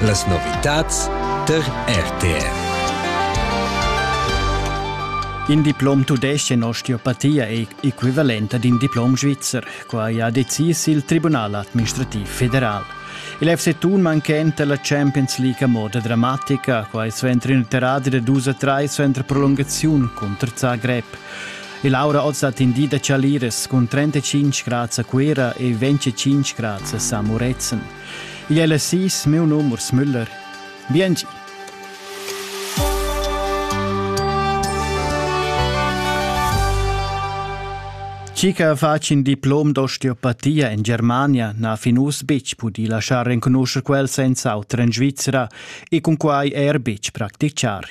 Las novitads tar RTR. In diplom tudesc in osteopatia è equivalent ad in diplom svizzer. Quai ha decis il Tribunal administrativ federal. Il FC Thun manchenta la Champions League a moda dramatica, quai suenter in terradi da dus a 3 suenter prolungaziun cunter Zagreb. E l'aura oz ha tendì da chaliras cun 35 grads a Cuira e 25 grads a San Murezzan. Igl è la sis, meu num Urs Müller. Biengi! Chica fac in diplom d'osteopatia en Germania n'ha fin uss betg pudì laschar renconuscher quel senza auter en Svizzera e cun quai er betg practichar.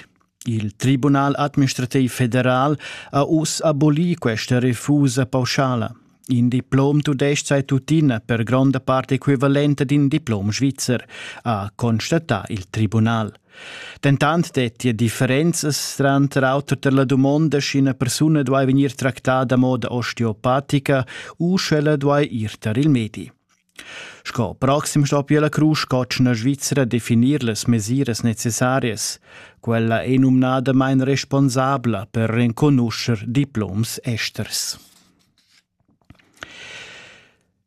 Il Tribunal administrativ federal ha uss abolì questa refusa pauschala. In diplom tudestg sei tuttina per gronda parte equivalente ad in diplom svizzer, ha constatà il tribunal. Dentant dettia differenzas tranter auter per la dumonda, sch'ina persuna duai vegnir tractada a moda osteopatica u sch'ella duai ir tar il medi. Sco proxim stoppi la crusch cotschna svizra definir las mesiras necessarias. Quella è numnadamain responsabla per renconuscher diploms esters.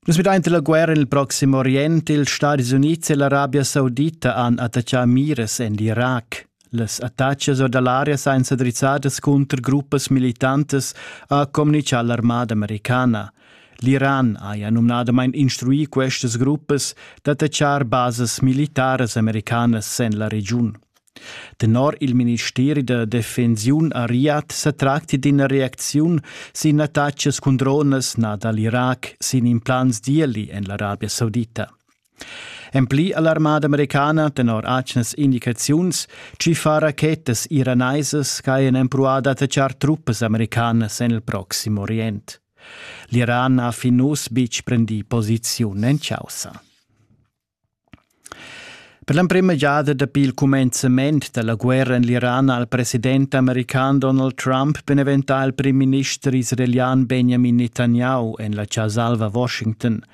Nus midante la guerra nel Proximo Orient, ils Stati Uniti e l'Arabia Saudita han attaccà miras en l'Irak. Las attachas or da l'aria sainza drizzadas cunter gruppas militantas ha communichà l'armada americana. L'Iran haja numnadamain instruì questas gruppas d'attachar basas militaras americanas en la regiun. Tenor il ministeri da defensiun a Riyadh sa tracti d'ina reacziun sin attachas cun dronas nà dal Irac sin implants d'ieli en l'Arabia Saudita. En pli ha l'armada americana tenor atgnas indicaziuns chi fa rachetas iraneisas ch'hajan empruà d'attachar truppas americanas en il Proxim Orient. L'Iran ha fin uss betg prendì posiziun en chaussa. Per l'emprima giada dapi il cumenzament da la guerra en l'Iran ha il president american Donald Trump beneventà il prim minister israelian Benjamin Netanyahu en la Ciasalva, Washington –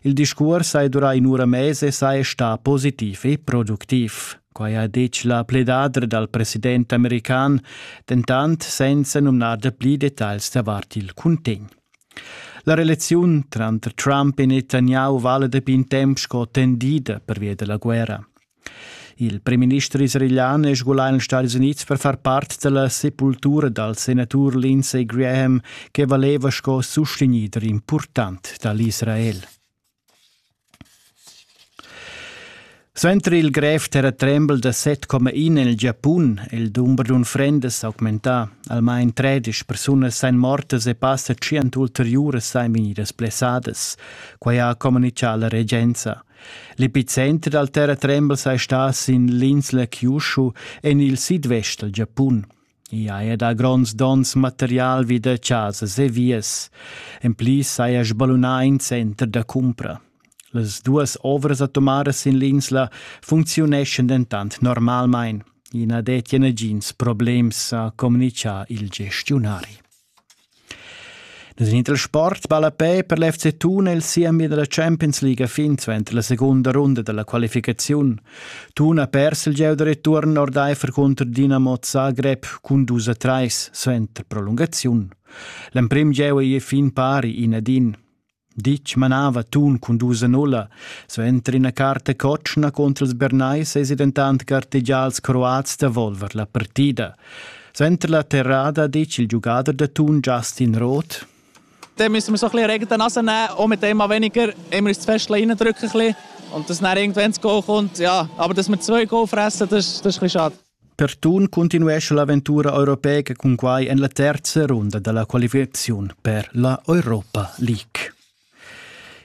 Il discuors hai durà in'ura mez e sai stà positiv e productiv. Quai ha ditg la pledadra dal president american, dentant senza numnar da pli detagls davart il cuntegn. La relaziun tranter Trump e Netanyahu vala dapi in temp sco tendida pervia da la guerra. Il primminister israelian è sgulà en ils Stadis Unids per far part da la sepultura dal senatur Lindsey Graham che valeva sco sustegnider impurtant da l'Israel. Suenter il grev terratrembel da 7,1 en il Giapun è il dumber d'unfrendas s'augmentà. Almain tredic persunas èn mortas e passa tschient ulteriuras èn vegnidas blessadas. Quai ha communitgà la regenza. L'epicenter dal terratrembel sei stas in l'insla Kyushu en il sidvest dal Giapun. I haja dà gronds dons material vi da chasas e vias. En pli saja sballunà in center da cumpra. Las duas ovras atomaras in l'insla funcziuneschan dentant normalmain. I na dettia nagins problems, ha communitgà il gestiunari. Nus in dal sport ballapè per l'FC Thun è il siemi da la Champions League fin suenter la segunda runda da la qualificaziun. Thun ha pers il gieu da return ordaifer cunter Dinamo Zagreb cun dus a trais suenter prolungaziun. L'emprim gieu ei fin pari in ad in. Ditg manava Tun cun dus en ulla. Suenter ina carta cotschna contra ils Bernais esi dentant gartegià als Croats da volver la partida. Suenter la terrada dice il giugader da Tun Justin Roth dann müssen wir so ein bisschen Regen in die Nase nehmen, auch mit dem weniger, immer uns das Fäschchen reindrücken ein bisschen und dass dann irgendwann das Goal kommt. Ja, aber dass wir zwei Goal fressen, das, das ist ein bisschen schade. Pertun cuntinuescha l'aventura europeica cun quai en la terza runda da la qualificaziun per la Europa League.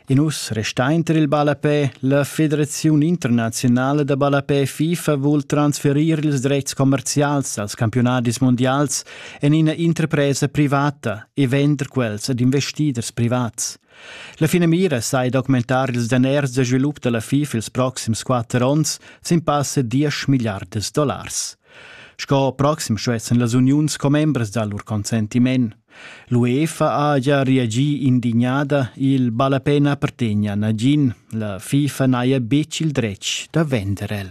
In uss restainter il ballapè, la Federaziun internazionala da ballapè FIFA vul transferir ils dretgs commerzials als campionadis mondials en ina interpresa privata e vender quels ad investiders privats. La finamira sai d'augmentar ils daners da svilup da la FIF ils proxims quatter onns sin pass da diesch milliardas dollars. Sco proxim stuessan las uniuns commembras dar lur consentiment. L'UEFA ha già reagì indignada, il ballapè na appartegna a nagin, la FIFA n'haja betg il dretg da vender el.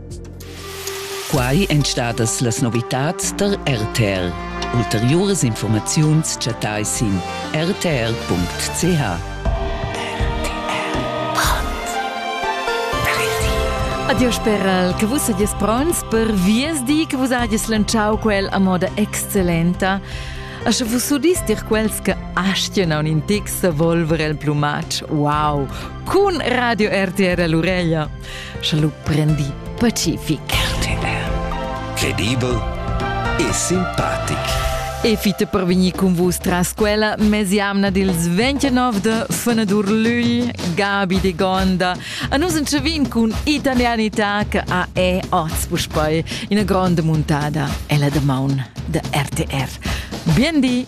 Quai èn stadas las novitads tar RTL. Ulteriuras informaziuns chattai sin rtr.ch. Adieu speral che vus sagies pronts per viesdi che vus hagies lantschau quel a moda excellenta. A sche vus udis dir quels che astien aun in tic se volver el plumatsch, wow, cun Radio RTR all'ureglia. sche lu prendi pacific. Credibel e simpatic. E fite per venir con vus tras quella mesiamna dils 29 de Fenadur Lügl, Gabi de Gonda. A nus en chavin cun italianità che a è oz puspei ina grande muntada, ella de maun de RTR. Bien di!